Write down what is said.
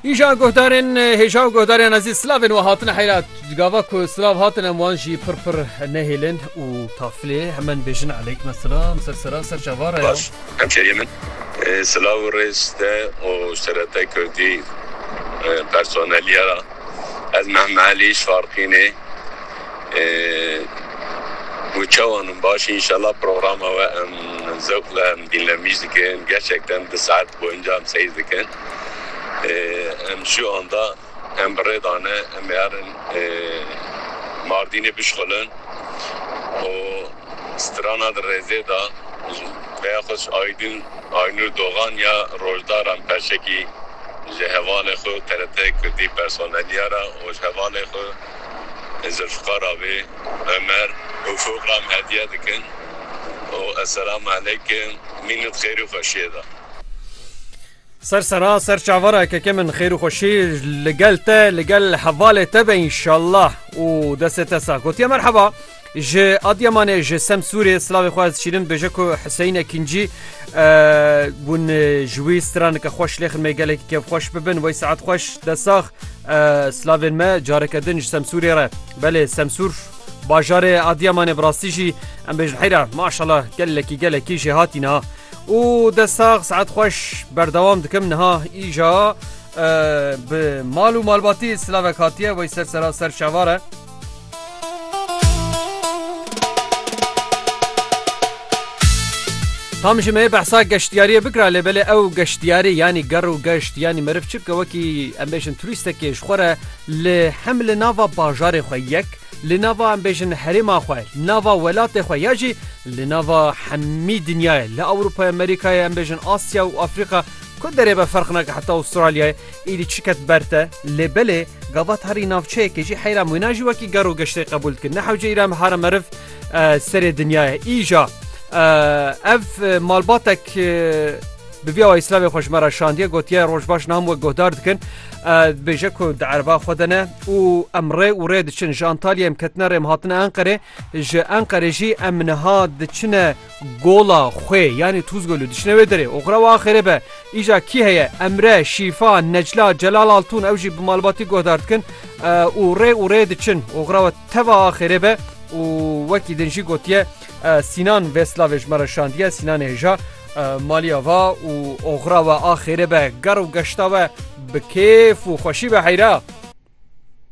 Îja guhdarên hêja û guhdarên ezî slavên we hatine heyra gava ku silav hatine wan jî pir pir nehêlin û taflê hemen bêjin eleyk me silam ser sera ser çavara hemşeriyê min silav û rêz te û serete kurdî personeliye ra ez mehme elî şarqînê û çewanin baş inşallah programa we em zewq le em dînlemîş dikin gerçekten di saet Bi encam seyr dikin. Em ji anda em bi rê dane em ê herin Mardînê bişxulin û strana di rêzê de peya xwe ji Aydin Aynur Dogan ya Rojdaran Perşekî ji hevalê xwe û TRT Kurdî personeliyara û ji hevalê xwe Zilfiqar avê Omer û Fûqam hediye dikin û Esselam Aleykim mînût xêr û xweşiyê da. Ser sena ser çavara keke min xêr û xweşî li gel te li gel hevalê te be înşallah û destê te sax gotiye merheba. Ji Adıyamanê ji Semsûrê silavê xwe ez şîrin bêje ku Hüseyin Ekincî hûn ji wî stranike xweş lêxin me gelekî kev xweş bibin wey saet xweş desax silavên me careke din ji Semsûrê re belê Semsûr bajarê Adıyamanê bi rastî jî em bêjin heyra maşala gelekî gelekî jê hatî niha û desax saet xweş berdewam dikim niha îja bi mal û malbatî silavek hatiye wey ser sera ser şevare. Tam ji me behsa geştiyariyê bikira lê belê ew geştiyarê yanî ger û geşt yanî meriv çi bike wekî em bêjin turistekê ji xwe re li hem li nava bajarê xwe yek li nava em bêjin herêma xwe nava welatê xwe ya jî li nava hemî dinyayê li Ewropaya Amerîkayê em bêjin Asya û Afrika ku derê be ferq nake heta Astralyayê Êdî çiket ber te, lê belê gavat herî navçeyekê jî heyra wêna jî wekî ger û geştê qebûl dike. Ne hewce îran bihare meriv serê dinya ye. Îja ev malbatek bi vîya wa îslamê xwe ji me re şandiye gotiye rojbaş nam wek guhdar dikin. Dibêje ku di ereba xwe de ne û em rê û rê diçin ji Antalyayê em ketine rê em hatine Enqerê ji Enqerê jî em niha diçine Gola, xwe, yanî Tuzgolû dişine wê derê. Oxira û axirê be. Îja kî heye? Emre, Şîfa, Necla, Celal Altûn ew jî bi malbatî guhdar dikin û rê û rê diçin. Oxira we teva axirê be û wekî din jî gotiye Sînan vê silavê ji me re şandiye. Sînanê hêja maliya va û oxira we axirê be. Gar û geşta we bi kêf û xweşî be heyra.